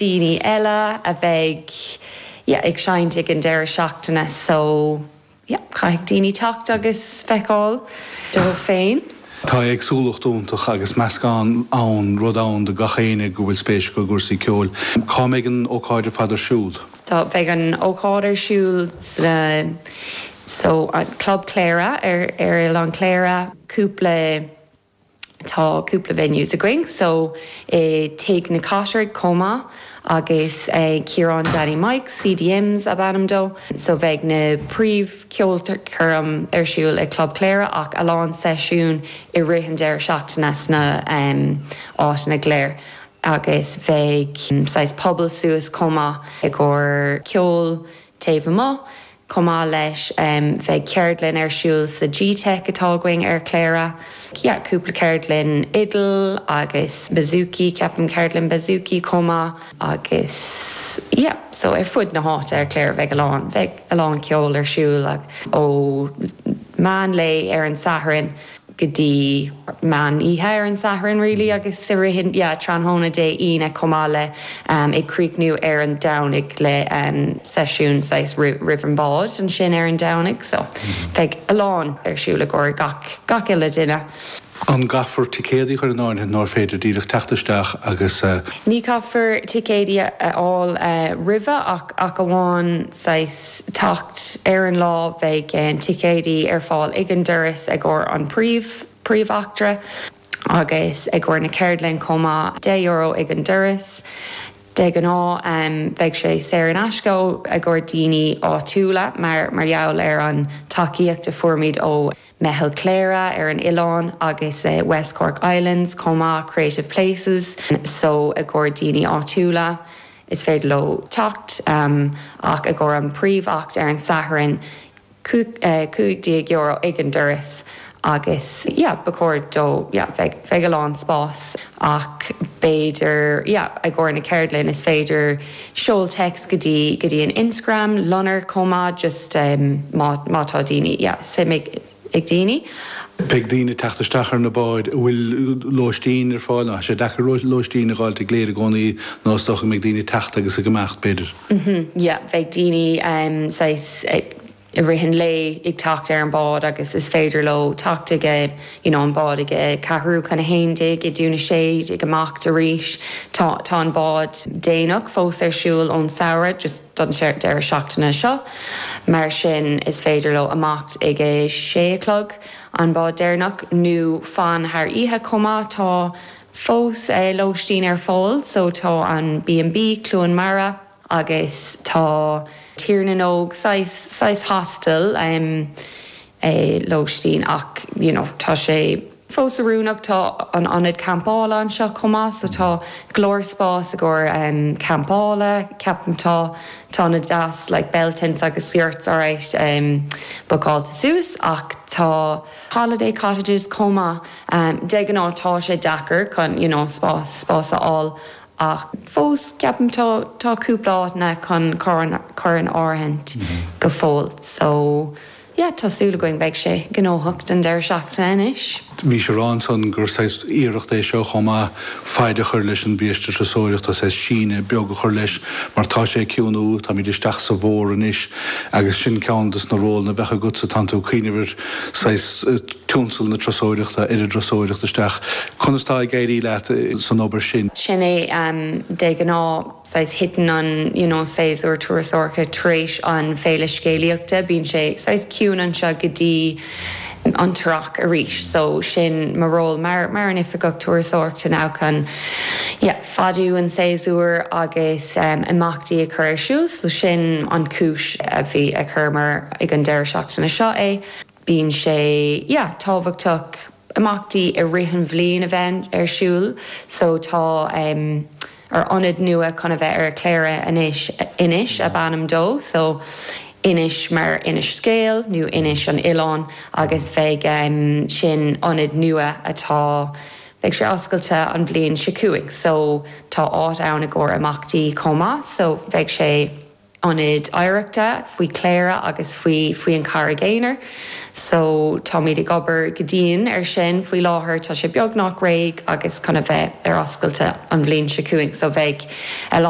daoine eile a bheidh, yeah, ag seinnt ag an deireadh seachtaine, so, yeah, caithfidh daoine teacht agus feiceáil dóibh féin. Tá éagsúlacht iontach agus meascán ann, rud ann do gach éinne go bhfuil spéis acu i gcúrsaí ceoil. Cá mbeidh an ócáid ar fad ar siúl? Tá, beidh an ócáid ar siúl sa, so, Club Chléire ar Oileán Chléire, cúpla. Tá cúpla venues againn, so i Tigh na Cathrach chomh maith agus ag Ciarán Danny Mike's, CDM's is ainm dó. So bheidh na príomh-cheolchoirm ar siúl i Club Chléire ach a lán seisiún i rith an deireadh seachtaine sna áiteanna go léir agus bheidh saghas puball suas chomh maith i gcomhair ceol taobh amuigh. Chomh maith leis bheidh ceardlann ar siúl sa gteic atá againn ar Chléire. Yeah, cúpla ceardlann fhidil agus bouzouki, ceapaim, ceardlann bouzouki chomh maith agus yeah, so ar fud na háite ar Chléire bheidh a lán, bheidh a lán ceol ar siúl ó mheán lae ar an Satharn. go dtí meán oíche ar an Satharn really agus i rith yeah tráthnóna Dé Aoine chomh maith le am ag críochnú ar an Domhnaigh le am seisiún saghas roimh roimh an bád ansin ar an Domhnaigh so bheidh a lán ar siúl i gcomhair gach gach uile duine. An gcaithfear ticéadaí a chur in áirithe nó an féidir díreach teacht isteach agus. Ní caithfear ticéadaí a fháil roimhe ach ach amháin saghas teacht ar an lá bheidh ticéadaí ar fáil ag an doras i gcomhair an príomh-achtra agus i gcomhair na ceardlainne chomh maith. Deich euro ag an doras. De ghnáth bheidh sé saor in aisce i gcomhair daoine áitiúla mar gheall ar an tacaíocht a fuairimid ó Meitheal Chléire ar an oileán agus West Cork Islands chomh maith, Creative Places so i gcomhair daoine áitiúla is féidir leo teacht ach i gcomhair an príomh-acht ar an Satharn, €15 ag an doras agus yeah ba chóir do yeah bheidh a lán spás ach b'fhéidir yeah i gcomhair na ceardlann is féidir. Seol téacs go dtí go dtí an Instagram, Lonar, chomh maith, just má má tá daoine, yeah, suim ag ag daoine. Beidh daoine ag teacht isteach ar na báid an bhfuil lóistín ar fáil, nó tá sé deacair lóistín a fháil i gCléire i gcónaí, nó is dócha go mbeidh daoine ag teacht agus ag imeacht, b'fhéidir. Uhmm, yeah, bheidh daoine, saghas, i rith an lae ag teacht ar an bhád agus is féidir leo teacht ag you know an bád ag a ceathrú chun a haon déag ó Dhún na Séad amach arís tá tá an bád déanach fós ar siúl ón samhradh just don deireadh seachtaine seo mar sin is féidir leo amacht ag a sé a chlog an bád deireanach nó fan thar oíche chomh maith tá fós lóistín ar fáil so tá an B and B Cluain Mara Agus tá Tigh na nÓg saghas, saghas hostel, em, eh, lóistín ach, you know, tá sé fós oiriúnach, tá an ionad campála anseo chomh maith so tá go leor spás i gcomhair, em, campála, ceapaim, tá, tá na deis, like bell tents agus yurts alright, em, bookáilte suas ach tá holiday cottages chomh maith, em, de ghnáth tá sé deacair chun, you know, spás, spás a fháil Ach fós, ceapaim, tá cúpla áit ann chun cur in áirithint go fóill. So, yeah, tá súil againn beidh sé gnóthach don deireadh seachtaine anois. Bhís ag rá ansan gur saghas iarracht é seo chomh maith faid a chur leis an mbiaiste turasóireachta, tá saghas síneadh beag a chur leis mar tá sé ag ciúnú, táimid isteach sa bhfómhar anois agus sin ceann dos na rólanna a bheadh agat so tánn tú ag cuimhneamh ar saghas, tionscal na turasóireachta turasóirí a thabhairt isteach. Conas tá ag éirí leat san obair sin? Sin é de ghnáth saghas titeann an you know séasúr turasóireachta tar éis an Féile Scéalaíochta, bíonn sé saghas ciúin anseo go dtí an tEarrach arís so sin mo ról mar mar an Oifigeach Turasóireachta now chun yeah fadú an séasúr agus imeachtaí a chur ar siúl so sin an chúis a bhí a chuireamar ag an deireadh seachtaine seo é. Bíonn sé, yeah, tábhachtach imeachtaí i rith an bhliain a bheith ar siúl so tá em ár ionad nua chun a bheith ar Chléire anois, Inis ab ainm dó so Inis mar Inis Scéal nó Inis an oileán agus beidh em sin ionad nua atá, beidh sé oscailte an bhliain seo chugainn so tá áit ann i gcomhair imeachtaí chomh maith so beidh sé. Ionad Oidhreachta faoi Chléire agus faoi faoi an Charraig Aonair. So táimid ag obair go dian ar sin faoi láthair. Tá sé beagnach réidh agus chun a bheith ar oscailte an bhliain seo chugainn. So beidh a.